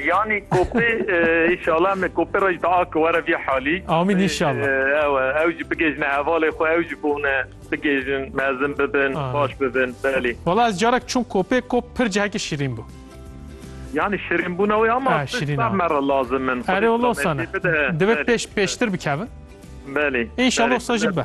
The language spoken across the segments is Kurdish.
Yanî kopê înşala em ê kopê re jî di a ki were vî halî. Amîn înşala. Ew e ew jî bigihîjne hevalê xwe ew jî bûne bigihîjin mezin bibin baş bibin belê. Wala ez carek çûm kopê kop pir cihekî şîrîn bû. Yanî şirînbûna wê ama sar me re lazim in. Erê wala wisa ne. Divê pêş pêştir bikevin. Belê. Înşala wisa jî be.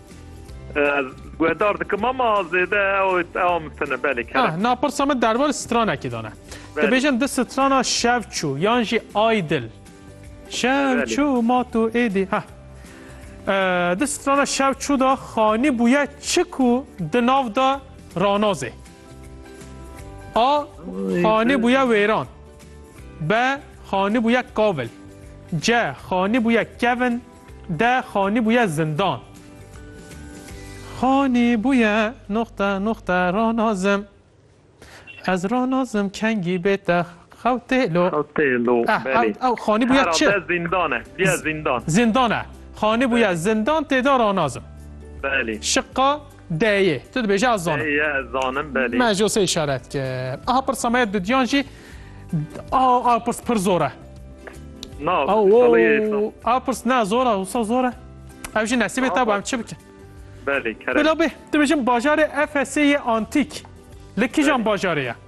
Ez guhdar dikim ama zêde ew mitine belê kere. Na pirsa min derbarê stranekî dane. Dibêjin di strana şevçû yan jî aydil. Şevçû ma tu êdî heh. Di strana şevçû da xanî bûye çi ku di nav da ranazê. A xanî bûye wêran. B xanî bûye kavil. C xanî bûye kevin. De xanî bûye zindan. Xanî bûye nuqte nuqte ranazim. Ez ranazim kengî bê te xewtê lo. Xewtê lo, belê. Ew ew xanî bûye çi? Heralde zindan e. Bûye zindan. Zindan e. Xanî bûye zindan tê de ranazim. Belê. Şiqa. D'yê. Tu dibêje ez zanim. D'yê ez zanim belê. Me jo sê işaret ki. Aha pirsa me didiyan jî a a pirs pir zor e. Na, a pirs ne zor e, wisa zor e. Ev jî nesîbê te bu em çi bikin. Belê, kerem. Bila bê, dibêjim bajarê Efesê yê antîk. Li kijan bajarê ye?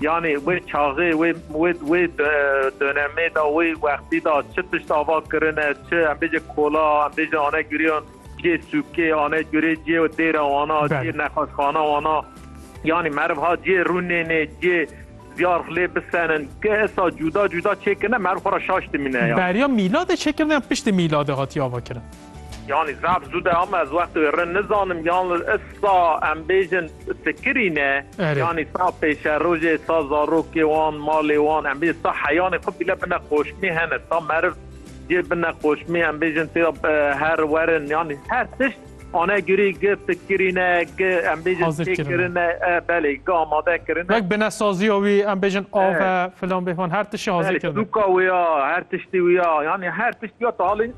Yanî wê çaxê wê wê wê donemê de wê wextî de çi tişt ava kirine çi em bêje kola em bêje ane guriyan cê sûkê ane curê cê û dêra wana cê nexweşxana wana yanî meriv ha cê rûnênê cê ziyarf lê bisenin ki esa cuda cuda çêkirine meriv xwe ra şaş dimîne ya. Beriya mîladê çêkirine yan piştî mîladê hatiye ava kirin? Yanî zaf zû de ama ez wextê wê rind nizanim yan li issa em bêjin fikirî ne Erê. yanî sa pêşerojê sa zarokê wan malê wan em bêjin sa heyanê xwe bîle bine qoşmî hene sa meriv cê bine qoşmî em bêjin tê ya e, her werin yanî her tişt ane gurî gi fikirî ne gi em bêjin Hazir tê kirine. kirine e, belê gi amade kirine Wek binesaziya wî em bêjin ave filan bêvan her tişî hazir Belê, kirine. sûka wê ya her tiştî wê ya yanî her tiştî ya talê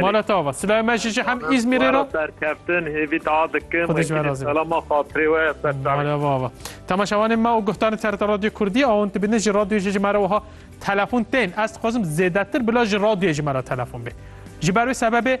Mala tava. Silahê me jî hem İzmirê ra. Serkeftin hêvî da dikim. Xwedî ji we razî. Selama xatirê we serserê. Mala vava. Temaşevanê me û guhdarên TRT Radyo Kurdî awin dibînin ji radyoyê jî ji me re wiha telefon tên. Ez dixwazim zêdetir bila ji radyoyê ji me re telefon bê. Ji ber wê sebebê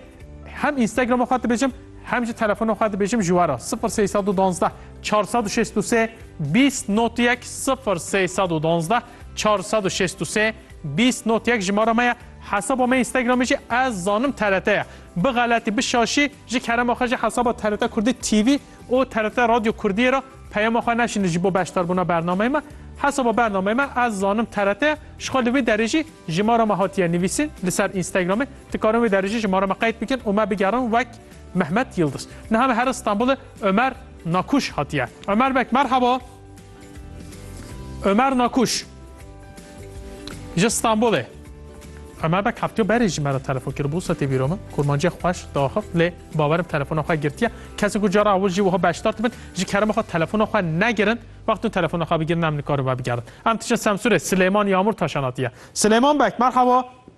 hem Instagram'a xwe dibêjim hem jî telefona xwe dibêjim ji we re 0312 463 20 not 1 0312 463 20 not 1 jimara me ye Hesaba me Instagramê jî ez zanim TRT ye. Bixeletî, bişaşî ji kerema xwe jî hesaba TRT Kurdî TV û TRT Radyo Kurdiyê re peyama xwe nefşîne ji bo beşdarbûna bernameyê me. Hesaba bernameyê me ez zanim TRT ye. Ji xwe li wê derê jî jimara me hatiye nivîsîn li ser Instagramê. Dikarin wê derê jî jimara me qeyd bikin û me bigerin wek Mehmet Yildiz. Niha me here Stenbolê Omer Nakuş hatiye. Omer beg merhaba. Ömer Nakuş ji Stenbolê. Ömer bek heptiyo berê ji me re telefon kir bû setê vîro min kurmancê xweş daxif lê bawerim telefona xwe girtiye kesê ku cara ew jî wiha beşdar dibin ji kerema xwe telefona xwe negirin wextun telefona xwe bigirin em nikarin vebigerin em diçin semsûrê Silêman Yamûr taşanatiye Silêman bek merhaba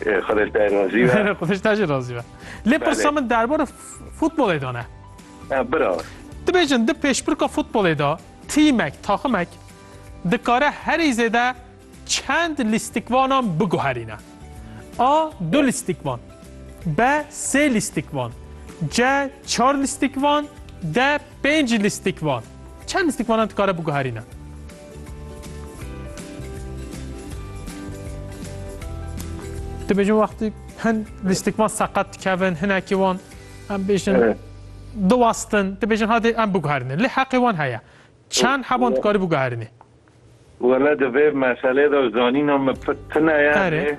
Xwedê te razî be. Xwedê te jî razî be. Lê pirsa min derbora futbolê de ne. Bira. Dibêjin di pêşbirka futbolê de tîmek, taximek dikare herî zêde çend lîstikvanan biguherîne. A du lîstikvan. B sê lîstikvan. C çar lîstikvan. D pênc lîstikvan. Çend lîstikvanan dikare biguherîne? Dibêjin wextî hin lîstikman seqet dikevin hinekî wan em bêjin diwastin dibêjin hadê em biguherînin lê heqê wan heye çend heban dikarî biguherînî Wele di vê meselê de zanîna min tune ye.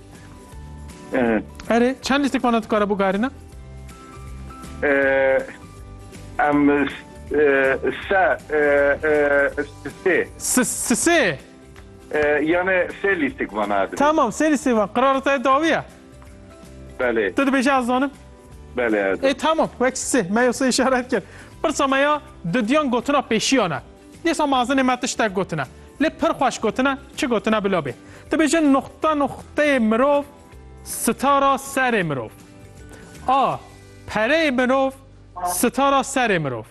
Erê çend lîstik vana dikare bû garîna? Em se sê. Sisê. Yani sê lîstik vana. Tamam sê lîstik van. Qirara te dawiye. Belê. Tu dibêje ez zanim. Belê. E tamam wek sê. Me yo sê işaret kir. Pirsa me ya didiyan gotina pêşiyana. Dîsa mazinê me tiştek gotine. Lê pir xweş gotine, çi gotine bila bê. Dibêjin nuqta nuqteyê mirov sitara serê mirov. A pereyê mirov sitara serê mirov.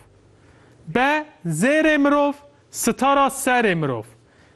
B zêrê mirov sitara serê mirov.